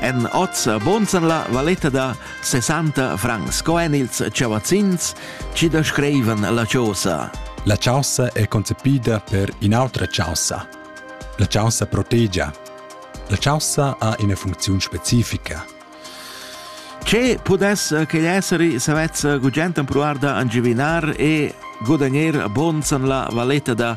En oz bonsan la valetta da 60 francs sco en ils chavazzins ci da screivan la chaussa. La chaussa è concepida per in'autra chaussa. La chaussa protegia. La chaussa ha ina funcziun specifica. Ce pudess che essere savez gugent empruar da angivinar e guadagner bonsan la valetta da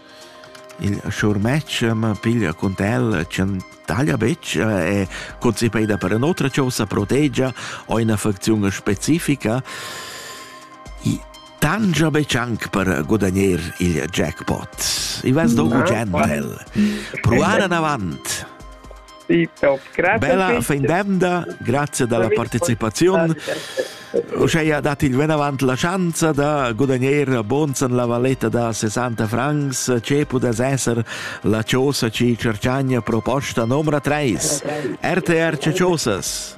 Il schurmetg ma piglia cun el ch'el taglia betg e concepeda per in'otra chaussa protegia ho ina facziun specifica. I tangia betg anc per gudagner il jackpot. I vess dou gentel. Pruar anavant! Bella fin d'emda, grazie dalla partecipazione. Uscheia dat il venavant la schanza da gudagner bons en la valetta da 60 francs ce pudess esser la chosa ci Cerciagna proposta numero 3. RTR Ciociosas.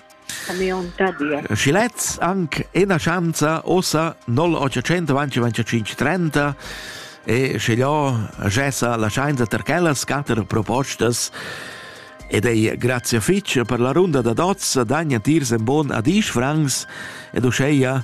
Schi lez anc ena schanza ossa 0825 e sche io gessa la schainza ter quellas quatter propostas ed ei grazia fitg per la runda da dots dagna tiers en bon adisch francs ed uscheia